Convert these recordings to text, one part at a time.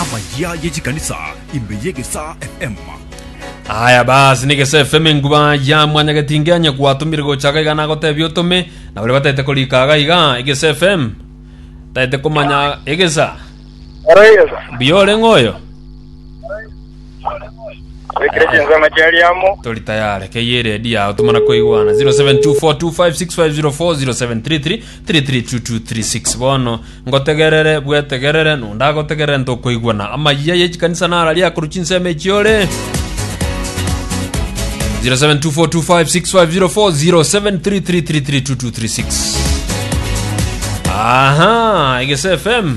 Amayia ye chikanisa ime y'egesaa FM. Aya basi negese FM enguba ya mwanyagetinge anye gwatumire gochaka iga nagotebia otome na bari batete korika aga iga egese FM taete komanya egesa Arayeza. buya orenge oyo Rekire chinsemo chiari amo. tori tayare keye redi yao tumana koigwana 0724256504 0733 332236 Bono ngotegerere, bwetegerere, nonde agotegerere ntokoigwana. Amayia ye chikanisa nara riakoru chinsemo echi ore. 0724256504 Aha, Egese FM.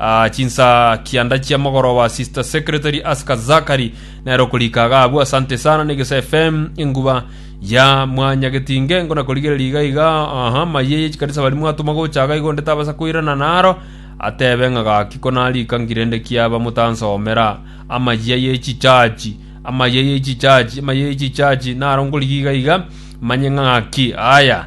Aa chinsaa kianda chia mogoroba sister secretary aska zakari nero korika gabu asante sana negesa fm enguba ya mwanya getinge ngona korigereria iga iga aha maye yechikanisa bari mwatuma gocha iga igo nde tabasa koirana naro atebe ng'a gaki konarika ngirende kiaba motansomera amayia yechichachi amayia yechichachi amayia yechichachi naro nkorigia iga iga manye ng'a gaki aya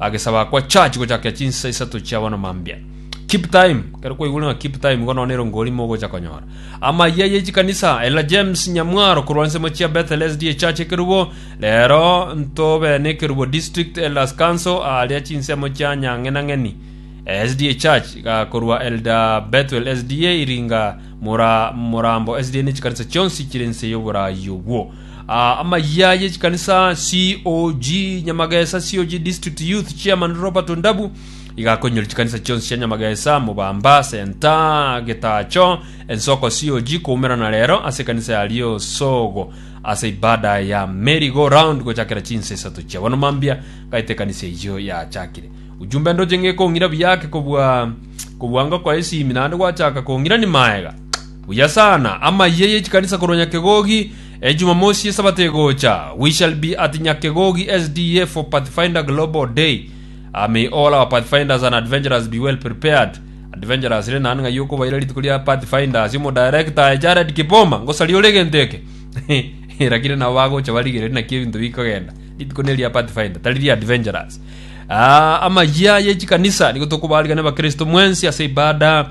agesaba kwa church gochakia chinsa isato chia bono mambia keep time kero kwaigure ng'a keep time igo noone erongo orimo ogocha konyora amayia ye chikanisa ela james nyamwaro korwa nsemo chia bethel sda church ekerubo rero ntobe nekerubo district elders council aria chinsemo chia nyang'enang'eni sda church iga korwa elda bethuel sda iringa mura murambo sda ne chikanisa chionsi chire nse y'oborayi obwo Amayia ye chikanisa COG Nyamagesa COG District Youth Chairman Robert Ondabu iga akoinyoria chikanisa chionsi chia Nyamagesa, Mobamba, Senta, Getacho, Ensoko COG koumera na rero ase ekanisa ya Riosogo ase ibada ya Merry Go Round gochakera chinsa isato chia bono mambia ngaete ekanisa eyio yachakire. Ujumbe ndoche ng'e kong'ira buya ake kobua kobua ngoko esimi naende gwachaka kong'irani maega. Buya sana, amayia y'echikanisa korwa Nyakegogi, Ejumamosi y'Esabato egocha, We shall be at Nyakegogi SDA for Pathfinder Global Day. A May all our Pathfinders and Adventurers be well prepared. Adventurers, renda aande ng'ai okobaira rituko ria Pathfinders. Omodaerekta aye, Jared Kipoma, ngosaria ore egento eke. Erakire nabo bagocha barigereri naki ebinto bikogenda. Rituko neria Pathfinder, tari ria Adventurers. Ah, amayia y'echikanisa, nigo tokobaarigania Abakristo mwensi ase ibada.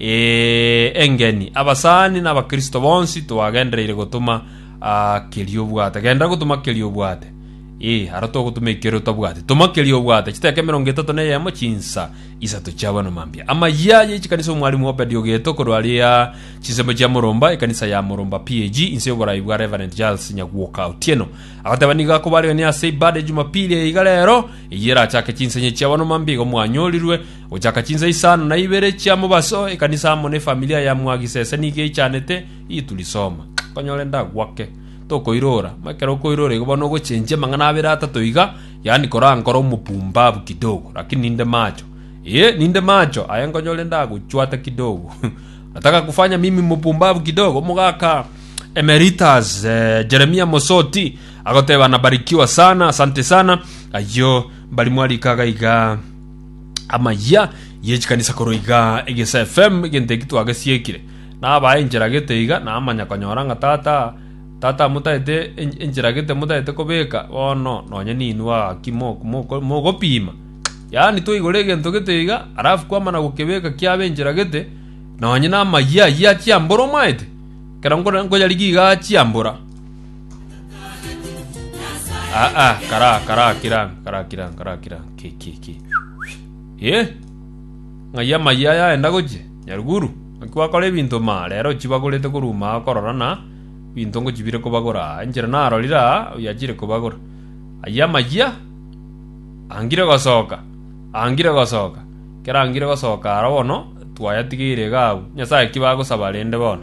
Ee, engeni, abasani na Abakristo bonsi twagendereire gotoma keria obwate. Genda gotoma keria obwate. Ee, aro togotoma ekeria otabwati. Toma keria obwate. Chiteka emerongo etato na eyemo, chinsa isato chia abana mambia. Amayia aye echikanisa Omwalimu Obed Ogeto korwa aria Chinsemo chia Moromba, ekanisa ya Moromba PAG, inse y'oboraai bwa Reverend Giles Nyagwoka Otieno. Agoteba nigo akobarerania ase ibada ya Jumapili eye iga rero, eyio erachake chinsanye chia abana mambia igo mwanyorirwe Gochaka chinsa isano na ibere chia mobaso ekanisa amo nefamilia ya Mwagisese nigo eichanete Itulisoma. Nkonyora endagwake. Tokoirora. Mama ekero okoirora igo bono ogochenchia amang'ana abere atato iga, yaani kora nkore omopumbabu kidogo, lakini ninde macho. Ee, ninde macho, aye nkonyore ndagochwata kidogo. Nataka kufanya mimi mopumbabu kidogo. Omogaka Emeritus eh, Jeremia Mosoti agoteba nabarikiwa sana, asante sana. Ayio mbari mwarikaga iga. amayia yechikanisa korwa iga egesa fm egento eki twagesiekire nabae enchera gete iga namanya konyora ng'a tata tata motaete enchera gete motaete kobeka bono nonye ninwe gaki mogopima yaani toigora egento gete iga alafu kwamana gokebeka kiaba enchera gete nonye namayia ayia chiambora omaete ekero nkoyarigia iga chiambora Ah ah, kara kara kiran, kara kiran, kara kiran. Ki ki ki. Eh? Ng'ai amayia aya enda goche? Nyaruguru, ng'aki wakora ebinto ma rero chibagorete koruma korora na binto ngochibire kobagora aa. Enchera narorire aa oyachire kobagora. Ayia amayia? Angire gosoka. Angire gosoka. Kera angire gosoka aro bono twayatigeire iga abwo. Nyasae ki bagosaba rende bono?